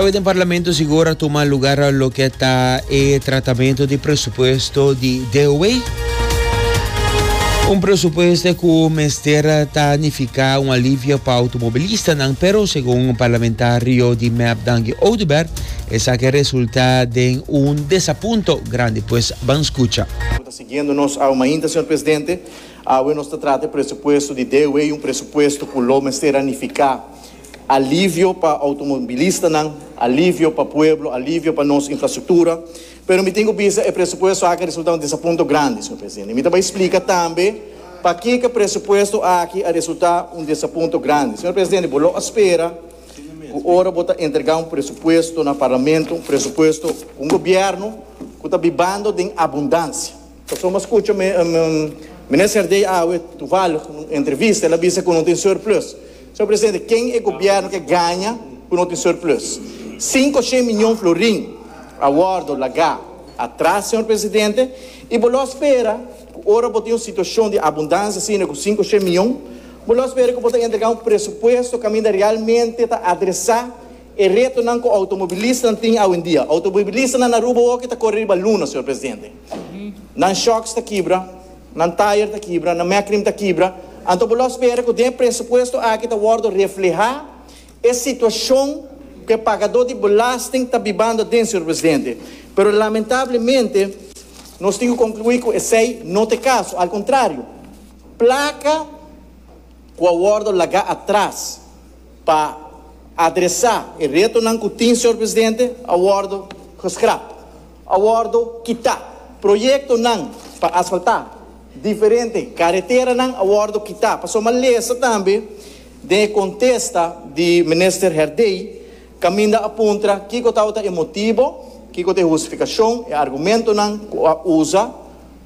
Awe den Parlamento sigur a tuma lugar loke ta e tratamento di presupuesto di DOW. Un presupuesto ku mester ta nifiká un alivio pa automobilistanan, pero segun parlamentario di mep Dangi Oduber, esaki resultá den un desapunto grandi. Pues ban skucha. Ku ta siguiendo nos awe mainta, señor presidente. Awe nos ta trata e presupuesto di DOW, un presupuesto ku lo mester a nifiká. Alivio pa outomobilistanan, alivio pa pueblo, alivio pa nos infrastruktura. Pero mi tin ku bisa e presupuesto aki a resulta un desapunto grandi, señor presidente. Mi ta bai splika tambe pakiko e presupuesto aki a resulta un desapunto grandi. Señor presidente, bo lo a spera ku ora bo ta entrega un presupuesto na Parlamento, un presupuesto ku un gobierno ku ta bibando den abundansia. Pasobra a scucha mi, Meneer Serdey awe toevallig na un entrevista el a bisa cu no tin surplus. Señor Presidente, ken e gobierno ke gaña cu no tin surplus? Cinco shen miyon florin a wordo laga atras, Señor Presidente, y bo lo spera cu ora bo tin un situacion di abundancia asina cu cinco shen miyon, bo lo spera cu bo ta entrega un presupuesto caminda realmente ta adresa E retonan cu automobilistan tin awendia. Automobilistanan na Aruba hoki ta core riba luna, señor presidente. Nan shocks ta kibra, nan tire ta kibra, nan mecnim ta kibra. Anto bo lo spera cu den e presupuesto aki ta wordo refleha e situacion cu e pagador di belasting ta bibando aden, señor presidente. Pero lamentablemente nos tin cu conclui cu esey no ta e caso. Al contrario, placa cu a wordo laga atras. Pa adresa e retonan cu tin, Señor Presidente, a wordo geschrap, a wordo kita. Proyectonan pa asfalta diferente careteranan a wordo kita. Pasobra m'a lesa tambe den e contesta di Minister Herdey caminda a puntra kico tabata e motibo, kico ta e hustificacion, e argumentonan cu a usa,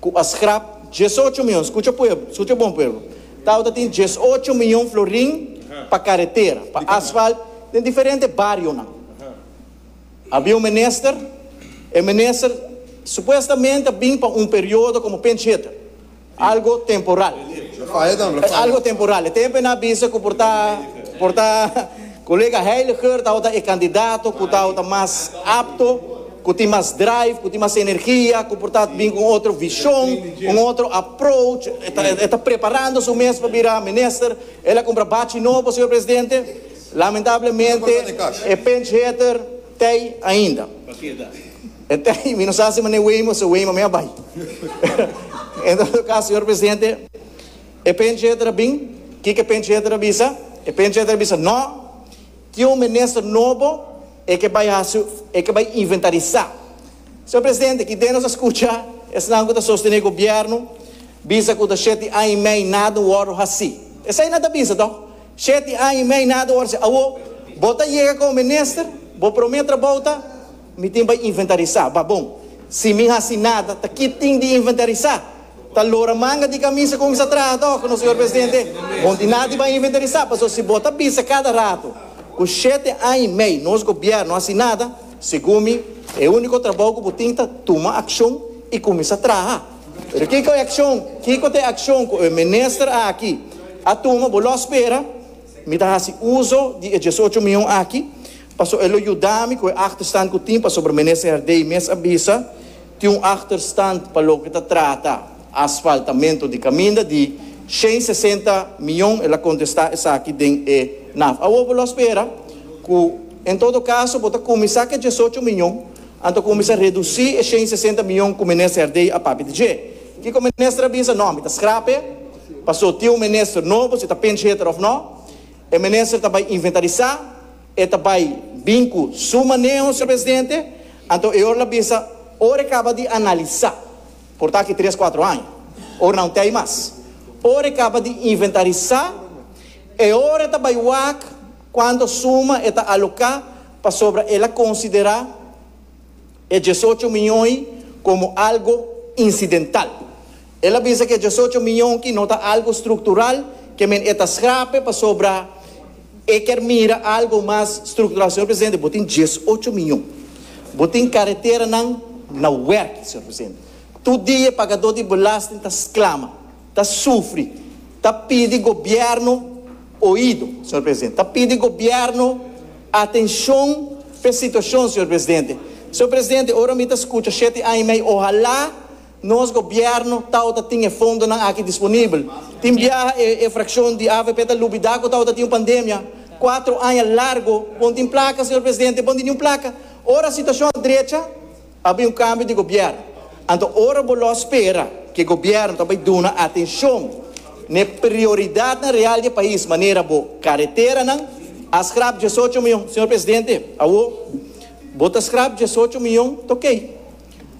Ku a skrap dies ocho mion, skucha pueblo, skucha bon pueblo, Tauta tin dies ocho mion florin pa karetera, pa asfalt den diferente barionan. Habia un minister, e minister supuestamente a bin pa un periodo komo penchetter, algo temporal, algo temporal, e tempo nan a bisa ku por ta, por ta. Kolega Heiliger tabata e kandidato ku tabata mas apto, ku tin mas drive, ku tin mas energia, ku por ta bin ku un otro vishon, un otro approach. E ta preparando su mes pa bira minister. El a kumpra bachi nobo, señor presidente. Lamentablemente e pinch hitter t'ei ainda. E t'ei, mi no sa si Meneer Waymo, si Waymo mei a bai. En todo caso, señor presidente. E pengieter a bin. Kiko e pengieter a bisa? E pengieter a bisa, No, tin un minister nobo, e ke bai hasi, e ke bai inventarisá. Señor Presidente, kidé nos a skucha esnan ku ta sostené gobièrnu bisa ku ta sheti aña i mei nada no wòrdu hasi? Esei nan ta bisa tò, sheti aña i mei nada no wòrdu hasi. Awo bo ta yega komo minister, bo promé trabou ta. Mi tin pa inventarisá. Babon. Si mi hasi nada, ta ki tin di inventarisá? Ta lora manga di kamisa ku mi sa traha tòg, no señor presidente? Bon tin nada di ban inventarisá, pasobra si bo ta bisa kada ratu ku shete aña i mei nos gobièrnu no hasi nada, segun mi e úniko trabou ku bo tin ta tuma akshon i kuminsá traha. Pero kiko e akshon, kiko ta e akshon ku e minister aki a tuma? Bo lo a spera mi ta hasi uso di e diesocho mion aki Pasobra e lo yuda mi ku e achterstand ku tin, pasobra Minister Herdey mes a bisa, tin un achterstand pa loke ta trata asfaltamentu di kaminda di shen sesenta miyon, el a kontestá esaki den e naf. Awor bo lo a spera ku en todo kaso bo ta kuminsá ku e dies ocho miyon, anto kuminsá redusí e shen sesenta miyon ku Minister Herdey a papia di dje. Kiko Minister a bisa? No, mi ta skrap e, pasobra tin un Minister nobo, si ta pinch hitter òf no. E minister ta bai inventarisá, e ta bai bin ku su maneho, señor presidente, anto e ora la bisa ora e kaba di analisá, por ta aki tres kuatro aña, ora nan tei mas, ora e kaba di inventarisá, e ora e ta bai wak kuantu suma e ta aloká pasobra el a konsiderá. e diesocho mion ei komo algo insidental. El a bisa ku e diesocho mion ki no ta algo struktural, ke men e ta skrape pasobra e kier mira algo mas struktural. Señor Presidente, bo tin diesocho mion, bo tin kareteranan na wèrk, señor Presidente. Tur dia pagadó di belasting ta sklama. ta sufri, ta pidi gobierno oido, señor presidente, ta pidi gobierno atencion pa e situacion, señor presidente. Señor presidente, ora mi ta scucha shete aña y mei, ohala nos gobierno tawata tin e fondonan aki disponibel. Tin biaha e, e fraccion di avp ta lubida cu tawata tin un pandemia, cuatro aña largo, bon tin placa, señor presidente, bon di ni un placa. Ora situacion a drecha, Ta bai un kambio di gobièrn, anto ora bo lo spera ku e gobièrn ta bai duna atenshon na e prioridatnan real di e pais manera bo kareteranan. A skrap diesocho mion, señor presidente, awo bo ta skrap diesocho mion ta oke.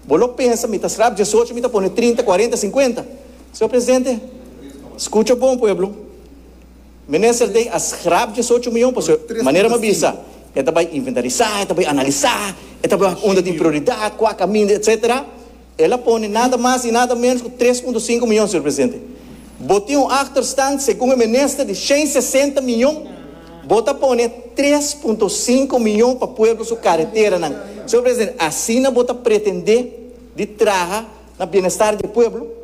Bo lo pensa mi ta skrap diesocho mi ta pone trinta, kuarenta, sinkuenta. Señor presidente, skucha bon pueblo. Minister Day a schrap diesocho mion pasobra e manera mi a bisa e ta bay inventarisá, e ta bay analisá, e ta bay wak unda tin prioridad, cua caminda, etc. El a pone nada mas y nada menos cu tres punto cinco mion, señor Presidente. Bo tin un achterstand, segun e minister, di shen sesenta mion, bo ta pone tres punto cinco mion pa pueblo su carreteranan. Señor Presidente, asina bo ta pretende di traha na bienestar di e pueblo?